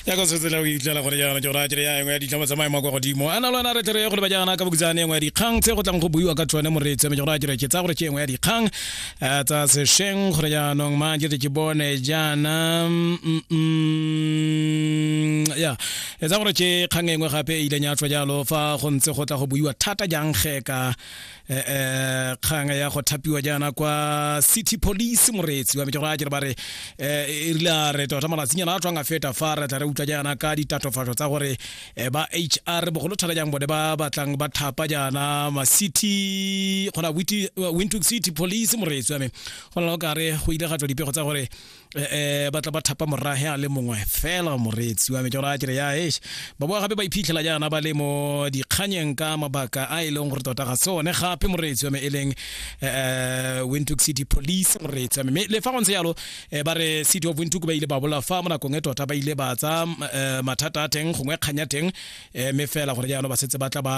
ya go tsetsela go itlela gore jaana ke gore a kere ya engwe ya ditlhama tsa maemo a kwa godimo a na le wena re tlere go le ba jaana ka bokutsane engwe ya dikgang tse go tlang go buiwa ka tsone moreetsi mme ke gore a kere ke tsaya gore ke engwe ya dikgang eh, tsa sešweng gore jaanong mang ke tle ke bone jaana mm, mm, ya e tsaya gore ke kgang engwe gape e ileng ya tswa jalo fa go ntse go tla go buiwa thata jang ge ka eh, eh, kgang ya go thapiwa jaana kwa city police moreetsi wa metšego a kere ba re eh, e rile a re tota malatsinyana a tswang a feta fa re tla re utlwa jaana ka ditatofatso tsa gore eh, ba hr bogolo thata jang bone ba batlang ba thapa jaana macity gona wintook city police moreetsi wa me go na le go kare go ile ga tswa dipego tsa gore eh, eh ba tla ba thapa morage a le mongwe fela moreetsi wa me ke gore a kere ya esh ba boa gape ba iphitlhela jaana ba le mo dikganyeng ka mabaka a e leng gore tota ga sone gape moreetsi wa me e leng eh, eh windhoek city police moreetsi wa me mme le fa go ntse jalo eh, ba re city of windhoek ba ile ba bola fa mo nakong e tota ba ile ba tsa mathata a teng gongwe kganya teng mme fela gore jaanong ba setse ba tla ba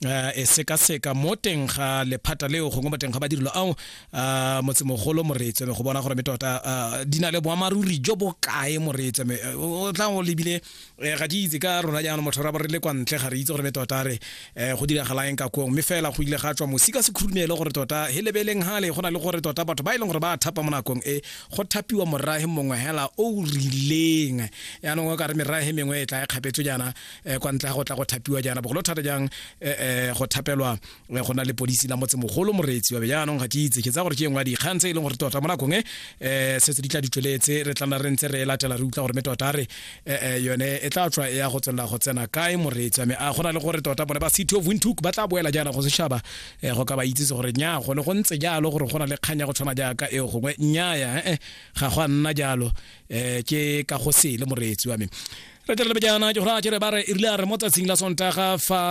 uh, e sekaseka mo teng ga lephata leo gongwe mo teng ga badirelo ao uh, motsemogolo moreetswe go bona gore me tota uh, di na le boamaruri jo bo kae moreetswe me o tla go lebile uh, ga di itse ka rona jaanong motho ra bo re le kwa ntle ga re itse gore me tota re uh, go diragalaeng ka kong mme fela go ile ga tswa mosi ka sekhurumelo gore tota he lebeleng gale go na le gore tota batho ba e leng gore ba thapa mo nakong e go thapiwa morage mongwe hela o rileng yaanong o ka re merage mengwe e tla e kgapetswe jaana um kwa ntle ga go tla go thapiwa jaana bogolo thata jang um go thapelwa go na le polisi la motse mogolo moreetsi wa be jaanong ga ke itse ke tsa gore ke engwe ya dikgang tse e leng gore tota mo nakong e um setse di tla di tsweletse re tlana re ntse re e latela re utlwa gore me tota re um yone e tla tswa e ya go tswelela go tsena kae moreetsi wa me a go na le gore tota bone ba city of windhoek ba tla boela jaana go setšhaba um go ka ba itsise gore nya gone go ntse jalo gore go na le kgang ya go tshwana jaaka eo gongwe nnyaya ee ga go a nna jalo um ke ka go sele moreetsi wa me re tswelele pele jaana ke gore a kere ba re e rile a re mo tsatsing la sontaga fa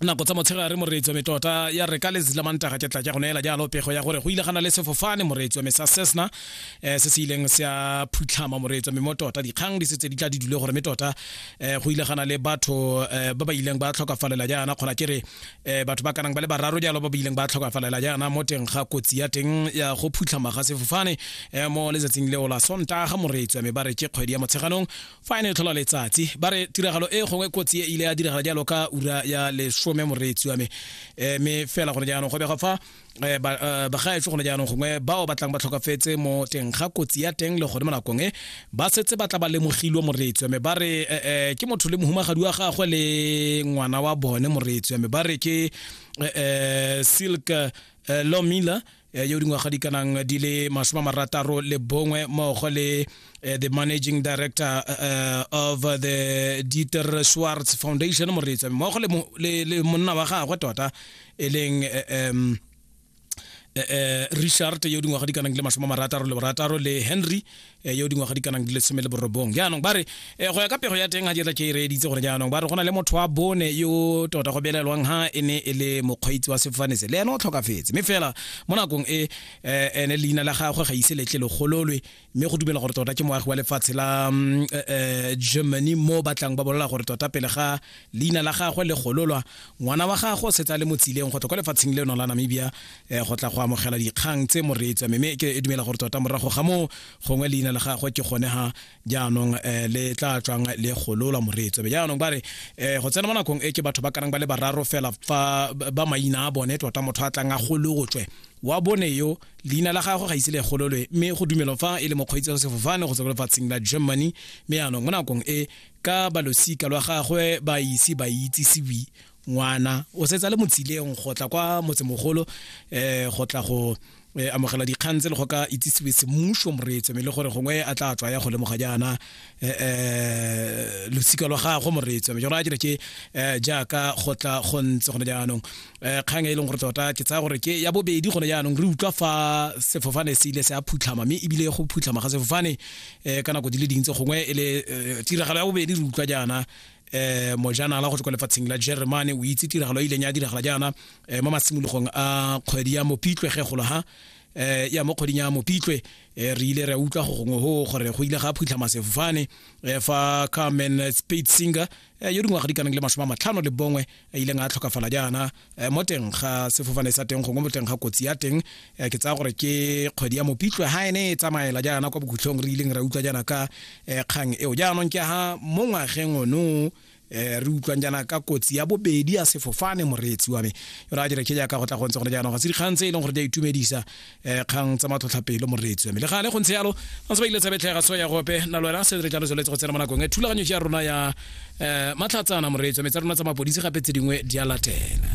nako tsa motshegare moreetsi wa metota ya re ka letsatsi la mantaga ke tla ke go neela jalo pego ya gore go ile gana le sefofane moreetsi wa me sa sesna um se se ileng se a phutlhama moreetsi wa me mo tota dikgang di setse di tla di dule gore me tota um go ile gana le batho um ba ba ileng ba tlhokafalela jaana kgona ke re eh batho ba kanang ba le bararo jalo ba bileng ba tlhokafalela jaana mo teng ga kotsi ya teng ya go phutlhama ga sefofane eh mo letsatsing leo la sontaga moreetswa me ba re ke kgwedi ya motsheganong fa e ne e tlhola letsatsi ba re tiragalo e gongwe kotsi e ile ya diragala jalo ka ura ya lesome moreetswa me eh me fela gone jaanong go bega fa eh, ba eh, bagaetse gone jaanong gongwe bao ba tlang ba tlhokafetse mo teng ga kotsi ya teng le gone mo nakong e ba setse ba tla ba lemogilwe moreetswe mme ba re eh, eh, ke motho le mohumagadi wa gagwe le ngwana wa bone moreetswe mme ba re ke eh, eh, silk eh, lomila eh, yo dingwaga di kanang di le masome a marataro le bongwe mmogo le eh, the managing director eh, of the dieter schwartz foundation moreetswe mmogo le mo- le le monna wa gagwe tota e leng um eh, eh, richard yo dingwaga di kanang le masome marataro le borataro le henry yo dingwaga di kanang le seme le borobong jaanong ba re go ya ka pego ya teng ga dietla ke e reeditse gore jaanong ba re go na le motho wa bone yo tota go belelwang ha e ne e le mokgweetsi wa sefofane se le ene o tlhokafetse mme fela mo nakong e ene leina la gagwe ga ise letle legololwe mme go dumela gore tota ke moagi wa lefatshe la mm, eh, eh, germany mo batlang ba bolela gore tota pele ga leina la gagwe le gololwa ngwana wa gagwe o setsa le mo tsileng go tla kwa lefatsheng leno la namibia eh, go tla go amogela dikgang tse moreetswa mme ke e dumela gore tota morago ga moo gongwe leina la gagwe ke gone ga jaanong eh, le tla tswang le gololwa moreetswa be jaanong ba re eh, go tsena mo nakong e ke batho ba karang ba le bararo fela fa ba maina a bone tota motho a tlang a golotswe wa bone yo leina la gagwe ga ise le gololwe mme go dumelwa fa e le mokgweetsi wa sefofane go tswa lefatsheng la germany mme yaanong mo nakong e ka balosika lwa gagwe ba ise ba itsisiwi ngwana o setsa le motsileng go tla kwa motsemogolo um eh, go tla go eh, amogela dikgang tse le go ka itsisiwe semmuso moreetso mme le gore gongwe a tla tswa ya go lemoga jaana eh, eh, losika lwa gagwe moreetsi jalo a kere ke eh, jaaka go tla go ntse gone jaanong eh, kgang e leng gore tota ke tsaya gore ke ya bobedi gone jaanong re utlwa fa sefofane se ile se a phutlhama mme ebile go phutlhama ga sefofane eh, ka nako di le dintse gongwe e le eh, tiragalo ya bobedi re utlwa jaana eh mojanala go tswa kwa lefatsheng la germany o itse tiragalo e ileng ya diragala jaana eh, mo masimologong a kgwedi ya mopitlwe ge golo ha eh ya mo kgweding ya mopitlwe eh, re ile re a utlwa go gongwe go gore go ile ga phutlhama sefofane eh, fa carmen spade singer eh, yo dingwaga di kanang le masome a matlhano le bongwe a ileng a tlhokafala jaana mo teng ga sefofane sa teng gongwe mo teng ga kotsi ya teng ke tsaya gore ke kgwedi ya mopitlwe ga ene e tsamaela jaana kwa bokhutlhong re ileng ra utlwa jaana ka kgang eo jaanong ke ga mo ngwageng ono eh re utlwang jana ka kotsi ya bobedi ya sefofane moreetsi wa me yo ra dire ke jaaka go tla go ntse gore jaanong ga se dikgang tse e leng gore di a itumedisa um kgang tsa matlhotlhapelo moreetsi wa me le gale go ntse yalo ba ntse ba ile tsabetlega so ya gope na lwena se re jalo tsweletse go tsena mo nakong e thulaganyo ya rona ya um matlhatsana moreetsi wa me tsa rona tsa mapodisi gape tse dingwe di a latela